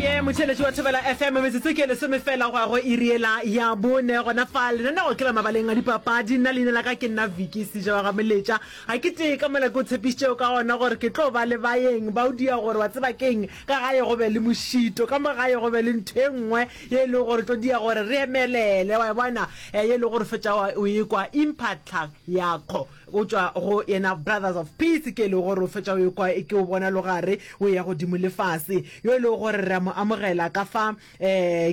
oye motšheletši wa thobela fm metsotso ke lesome fela go ya go iriela ya bone gona fa lenanego ke la mabaleng a dipapadi nna leina la ka ke nna viki seja wa gamoletša ga ke tee ka mola ke o tshepišitšeo ka gona gore ke tlo ba le bayeng ba o dia gore wa tseba keng ka gae go be le mošito ka mo gae go be le ntho e nngwe ye e lego gore tlo dia gore re emelele wa e bona eh, ye e lego gore fetša o e kwa impatla yakgo go tšwa go yena Brothers of Peace, ke e lego gore o fetša o ekwa e ke o bona logare o ya godimo le fase, yo e lego gore re a mo amogela ka fa um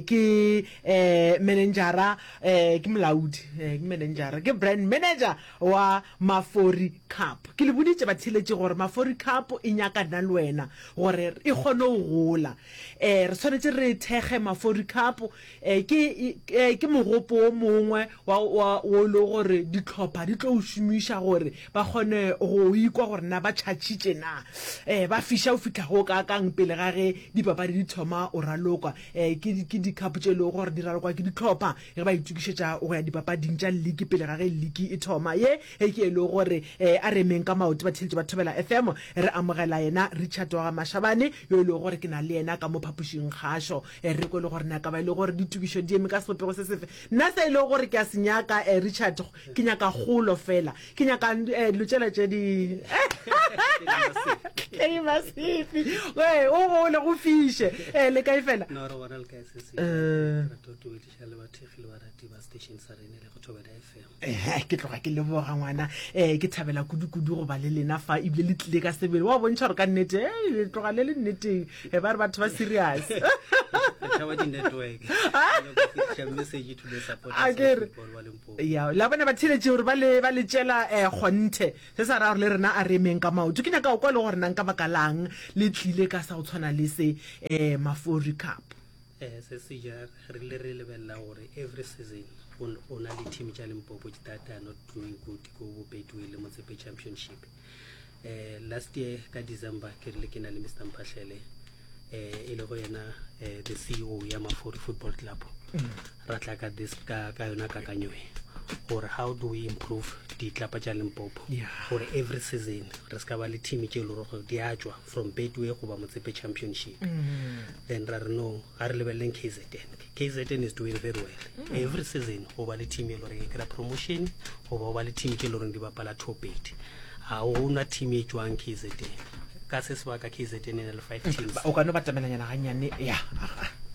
ke um menenjara um ke molaodi um ke menenjara ke brand manager wa Mafori Cup. Ke le boditše batheeletši gore Mafori Cup e nyaka nna le wena gore e kgone go gola, um re swanetše re thekge Mafori Cup. Eh, ke, eh, ke mogopo wo mongwe wa, wa, wo e le gore ditlhopha di tlo o šomiša gore ba kgone go ikwa gore na ba tšhatšitše na eh, ba fiša o fitlha go ka kang pele ga ge dipapadi di thoma o ralokwa eh, ke, ke dikhapo tše e lego gore di ralokwa ke ditlhopha ge ba itokišetša go ya dipapading tša liki pele ga ge liki e thoma ye e ke e lego gore eh, a re emeng ka maoto batheletši ba thobela fm re amogela yena richard wa gamashabane yo e lego gore ke na le yena ka mo phapošing kgašo e re ko e le gore naka ba e le gore ditukišo di eme ka sebopego se sefe nna se e le gore ke a se nyaka um richard ke nyaka golo fela ke nyaka um eh, dilo tšela tše di tlei masefi ee o gole go fiše um le kae fela eh. ehe ke tloga ke leboga ngwana um ke thabela kudu-kudu go ba le lena fa ebile le tlile ka sebele wa bontšha gore ka nnete e le tloga le le nneteng e ba re batho ba serious akere ya la bona ba theletše gore ba le ba le tšela um kgonthe se sa raya gore le rena a re emeng ka maoto ke nyaka o kwa le gore nang ka baka lang le tlile ka sa go tshwana le se um mafori cup Ee, se se ja re rile re lebelela gore every season o na le team tša limpopo that are not doing good ko bopetue le motsepe championship um last year ka december ke rile ke na le mr mphahlele um e lego yena um the ceo ya mafori football club mm. ra tla ka this ka ka yona kakanyoe gore how do we improve ditlapa tša limpopo gore every season re se ka ba le team tše e lego gore di a tswa from betway goba motsepe championship mm -hmm. then ra re no ga re lebeleleng kzn kzn is doing very well mm -hmm. every season go ba le team e loreng e kry promotion goba go ba le team tse e loreng di bapala topedi ga gona team e tswang kzn ka se sebaka kzn e na le five mm. teams o kano batamelanyana ganyane ya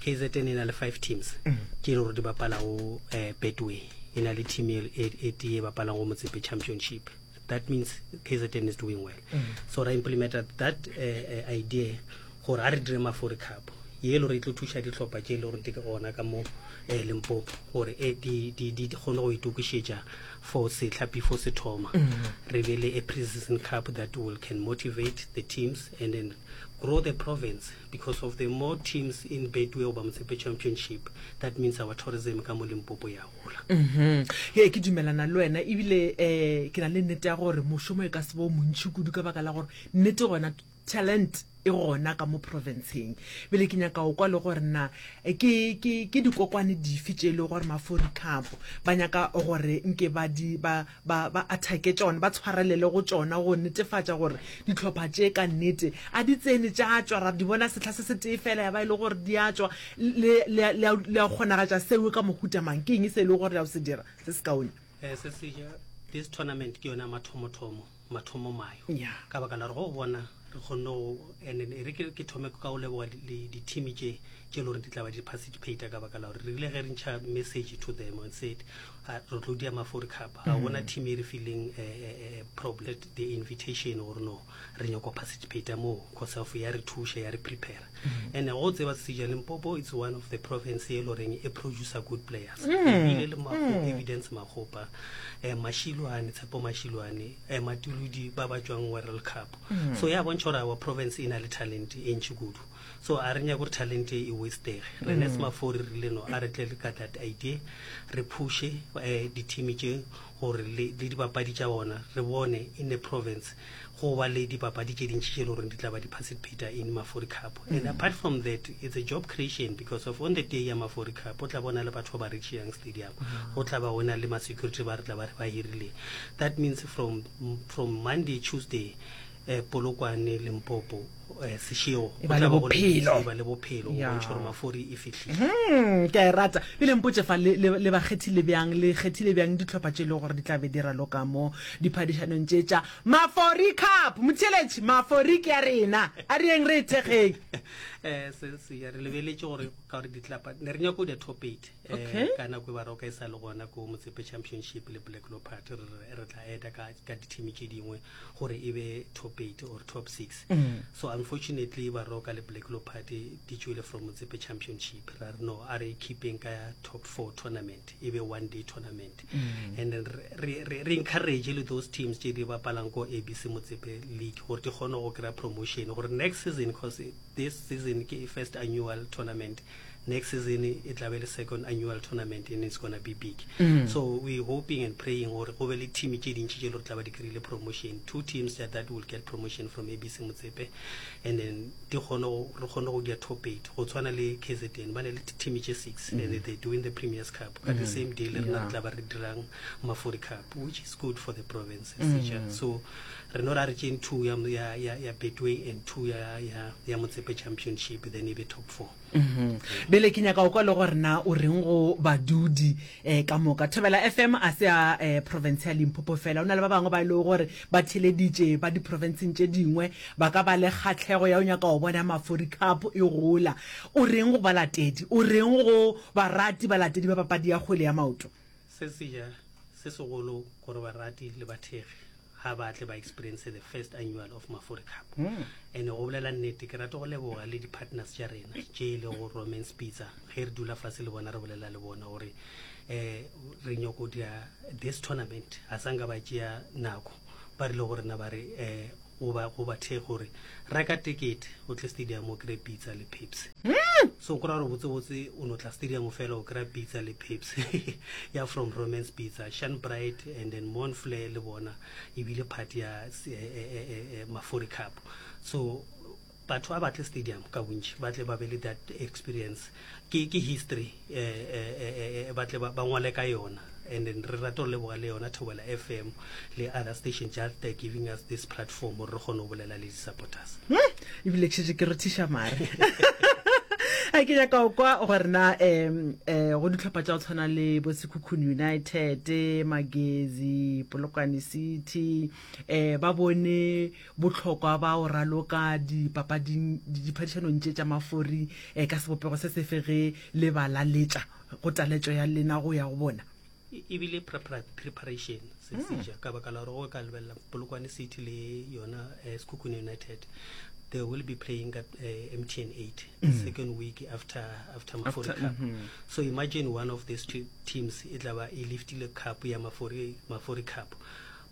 kzn e na le five teams mm. ke e le gore di bapala go um eh, betway e na le team e, e, e tee e bapalang go motsepe championship that means kzn is doing well mm. so ra implemented that uh, uh, idea gore a re dire mafori cup ye le gore e tlo thuša ditlhopha tše e le gore di ona ka mo um eh, lempopo gore e di kgone go itokišetša for setlha before se thoma mm-hmm. re be le a preseason cup that will can motivate the teams and then grow the province because of the more teams in betway goba motshepe championship that means our tourism ka mo limpopo yago gola ee ke dumelana le wena ebile um ke na le nnete ya gore mošomo e ka se bo montšhi kudu ka baka la gore nnete gona talent e gona ka mo provinceng bele ke nyaka o kwa le gore na eh, ke, ke, ke dikokwane dife tše e le gore maforikapo ba nyaka gore nke ba di ba ba, ba athake tšona, ba tshwarelele go tšona go netefatša gore dihlopha tše ka nnete a di tsene tša tšwa, ra di bona sehla se se tee fela ya ba e le gore di a tšwa. Le, le, le, a, le a kgonagatša seo ka mohuta mang? Ke eng se e le gore le a o se dira se se kaone? Eh, se se, this tournament ke yona mathomothomo, mathomomayo, Yeah. ka baka la gore go bona re kgonne go and e re ke thome ka go leboga di-team tše tše le gore di tlaba di participate ka baka la gore re rile ge re ntšha message to them and said ah, re tlo dia mafori cup ga mm-hmm. gona team e re feeling eh, eh, eh, problem the invitation gore no re nyako participate moo cause of ya re thuša ya re prepare mm-hmm. and go tseba sesejane mpopo it's one of the province e le goreng e producer good players mm-hmm. ebile le evidence magopa um mashilwane tshepo mashilwane eh, matuludi ba ba tšwang world cup mm. so ya bontšha gore our province e na le talent e ntši kudu so a re nyake gore talent e wastege re ne mm. semafori re rile no a re tle le ka that idea re pushe um eh, dithimi tše gore le dibapadi tša bona re bone in the province go ba le dibapadi tše dintši tše le goreng di tla ba di-participata in mafori cup mm. and apart from that it's a job creation because of on the day ya mafori cup o tla bona le batho ba ba recheang stadium go tla ba go na le ma security ba re tla ba re ba hirile that means from from monday tuesday eh, polokwane limpopo eh, sešego go Eba le tla ba go le- bophelo. e ba le bophelo go Ya. bontšha gore mafori e fihlile Hmm, ke a e rata e le mpotse fa le le- le ba kgethile bjang le kgethile bjang ditlhopha tše e le gore di tla be di raloka mo diphadišanong tše tša mafori cup motheletši mafori ke ya rena a re yeng re e thekgeng Eh, se se ya re lebeletse gore ka gore ditlapa ne re nyako di-top eight okay. ka nako e ba roka e sa le gona ko motsepe championship le black lopart re re tla eta ka ka dithimi tše dingwe gore e be top eight or top six mm. so unfortunately ba roka le black lopart di tšwele from motsepe championship ra re no a re keeping ka ya top four tournament e be one day tournament mm. and then re, re, re encourage le those teams tše di bapalang ko abc motsepe league gore di kgone go kry-a promotion gore next season because this season ke first annual tournament mm. next season e tla be le second annual tournament and it's gonna be big mm. so we hoping and praying gore go be le team tše dintši tše le gore tla ba di kry-ile promotion two teams that, that will get promotion from abc motsepe and then re kgone go dia top eight go tshwana le kzn ba ne le team tše six mm. and they doing the premiers cup ka mm. the same day le rena re tla ba re dirang mafori cup which is good for the provinces mm. so Re no ra re tšeng two ya, ya, ya, ya Betway and two ya, ya, ya Motsepe Championship then e be top four. Bjale ke nyaka o kwa le gore na o reng go badudi eh, ka moka. Thobela FM a se a eh, province ya Limpopo fela, o na le ba bangwe ba e lego gore ba theleditše ba diprovinceng tše dingwe, ba ka ba le kgahlego ya o nyaka go bona Mafori Cup e gola. O reng go balatedi, o reng go barati balatedi ba papadi ya kgwele ya maoto? Se se ja se segolo gore barati le bathekgi. ga ba tle ba experience the first annual of mafori cup hmm. and go bolela nnete ke rate go leboga le di-partners tša rena tše e le go roman spitsa ge re dula fase le bona re bolela le bona gore um re nyoko dira this tournament ga sa nka ba tšea nako ba rile go rena ba re um go bathe gore reka tekete o tle stadium o kry pitsa le pepsi hmm. So go ra gore botse botse o no tla stadium fela o kry pizza le pips ya from romance pizza shan bright and then mon flair le bona e bile part ya eh, eh, eh, eh, eh mafori cup so batho a batle stadium ka bontši ba tle ba be le that experience ke, ke history eh, eh, eh, eh, eh, ba tle ba ngwale ka yona and then re rata go leboga le yona thobela fm le other station just uh, giving us this platform gore re kgone go bolela le di-supporters hmm? ebile ke šetse ke rothiša mare a ke nyaka o kwa gore na um um go ditlhopha tsa go tshwana le bo sekhukhuni united magezi polokwane city um ba bone botlhokwa ba o raloka dipapading diphadišanong tse tsa mafori um ka sebopego se sefege le balaletša go taletšo ya lena go ya go bona e bile preparation se hmm. seja ka baka la gore go ka lebelela polokwane city le yona um eh, sekhukhune united they will be playing ka uh, eh, mtn 8 mm. second week after after mafori after, cup mm -hmm. so imagine one of these two teams e tla ba e liftile cup ya mafori, mafori cup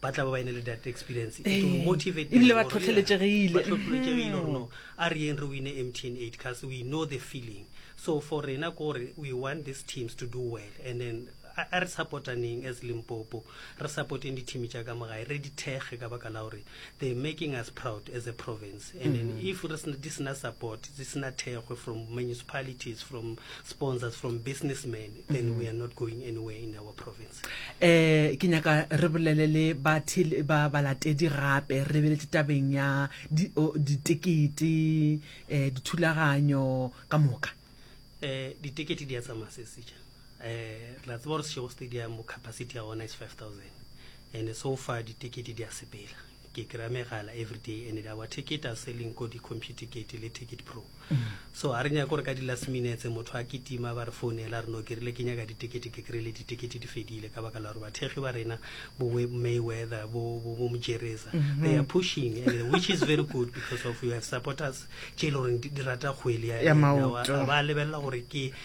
ba tla ba ba ene le that experience e tlo eh, motivate ebile ba tlhotlheletsegile ba tlhotlheletsegile gore no a re yeng re wine mtn 8 cause we know the feeling so for rena ke gore we want these teams to do well and then a re supportaneng as limpopo re supporteng di-team tša ka mogae re di thekge ka baka la gore they making us proud as a province and then mm-hmm. if di sena support di sena thekgwe from municipalities from sponsors from businessmen then we are not going anywhere in our province eh ke nyaka re bolele le ba ba balatedi gape re be le tabeng ya di di tikiti eh dithulaganyo ka moka eh di tikiti di ya tsamaya se se eh la tsebo re sego stadium capacity ya ona is 5000 and so far di tikiti di ya sepela Ke kry-a megala everyday and our ticket are selling ko di-computicate le ticket pro. So ga re nyake gore ka di-last minutes motho a kitima ba re founela re no ke rile ke nyaka ditekete ke kry-ile ditekete di fedile ka baka la gore bathekgi ba rena bo Mayweather bo bo bo Mojereza mm-hmm. they are pushing and which is very good because of you have supporters tše e le goreng di rata kgwele ya maoto ba lebelela gore ke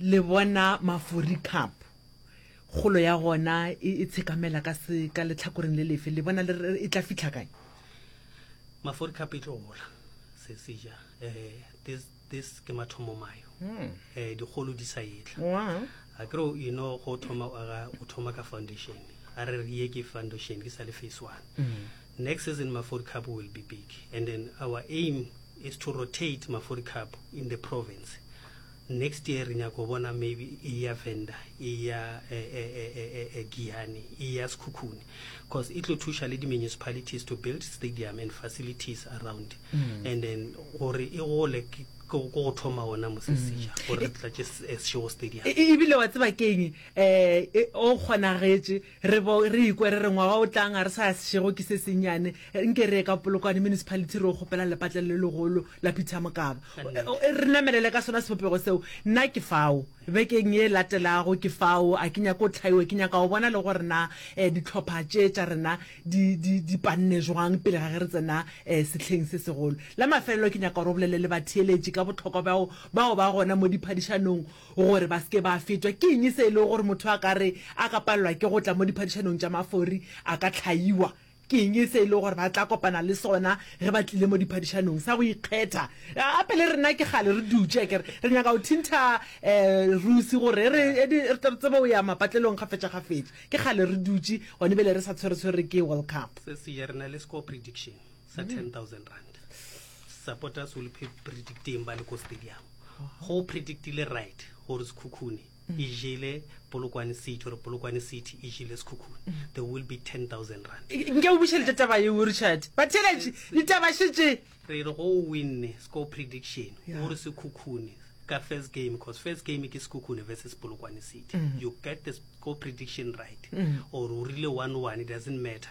Le bona Mafuri Cup, kgolo ya gona e, e tshekamela ka, se, ka letlhakoreng le lefe? Le bona le, e tla fihla kae? Mafuri Cup e tlo gola, se, se ja. Eh, this, this ke mathomo mayo. Hmm. Eh, dikgolo di sa etla. Wow. A ke re, you know, go thoma, o aga, o thoma ka foundation. A re re ye ke foundation, ke sa le phase one. Mm. Next season, Mafuri Cup will be big. And then our aim is to rotate Mafuri Cup in the province. Next year re nyaka go bona maybe e ya Venda, e ya Giyani, e ya Sekhukhune cause e tlo thuša le di-municipalities to build stadium and facilities around mm. and then gore e gole ko go thoma ona mosesesha mm. gore re tlatše sešego stadium e, e, ebile wa tseba keng um o kgonagetše Re bo re ikwa re re ngwaga o tlang ga re sa ya sešego ke se sennyane, nke re ye ka Polokwane Municipality re yo kgopela lepatlelo le legolo la Peter Mokaba re namelele ka sona sebopego seo. Nna ke fao, bekeng ye e latelago ke fao, a ke nyake go hlaiwa, ke nyaka go bona le gore na dihlopha tše tša rena di, di, di panne jwang pele ga ge re tsena sehleng se segolo. La mafelelo ke nyaka gore o bolele le batheeletši ka bohlokwa bja go, bja go ba gona mo diphadišanong Gore ba se ke ba fetwa, ke eng se e lego gore motho a ka re a ka palelwa ke go tla mo diphadišanong tša mafori a ka hlaiwa? Ke eng se e lego gore ba tla kopana le sona ge ba tlile mo diphadišanong? Sa go ikgetha. Gape le rena ke kgale re dutše, a ke re re nyaka go thintha Rusi gore re tle re tsebe go ya mapatlelong kgafetšakgafetša. Ke kgale re dutše, gone bjale re sa tshweretshwere ke World Cup. Seswi re na le score prediction. sa 10000 rand supporters will be predicting ba le ko stadium go predictile right gore sekhukhune mm. e jele polokwane city gore polokwane city e jele sekhukhune mm. there will be 10000 rand nke o bušelete taba eo richard batheletše ditaba šetse re re go winne score prediction gore sekhukhune ka first game because first game ke sekhukhune versus polokwane city mm. you get the score prediction right or o rile one one it doesn't matter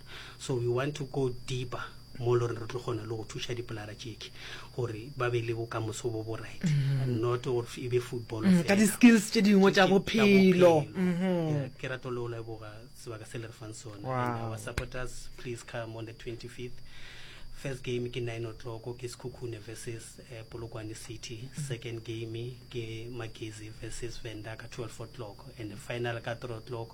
so we want to go deeper mo lore re tlo kgona le go thuša dipolara tšeke gore ba be le bokamoso bo bo right mm-hmm. not gore e be football mm, ka di-skills tše dingwe tša bophelo mm-hmm. ke rato le o leboga sebaka se le re fang sone our supporters please come on the 25th first game ke 9 o'clock ke sekhukhune versus uh, polokwane city mm-hmm. second game ke magezi versus venda ka 12 o'clock and the final ka 3 o'clock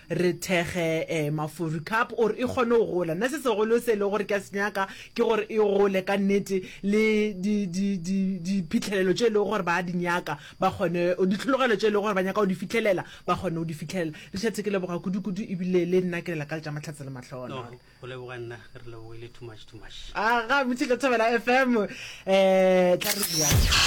re thekge um mafuri cup gore e kgone go gola nna se segolo se e le gore ke a se nyaka ke gore e gole ka nnete le diphitlhelelo tše e lego gore ba di nyaka ba kgone ditlhologelo tše e lego gore ba nyaka go di fitlhelela ba kgone go di fitlhelela le šetse ke leboga kudu-kudu ebile le nna ke lela ka le tša matlhatse le matlhola a ga botšhe ka thabela fm um tla re bjang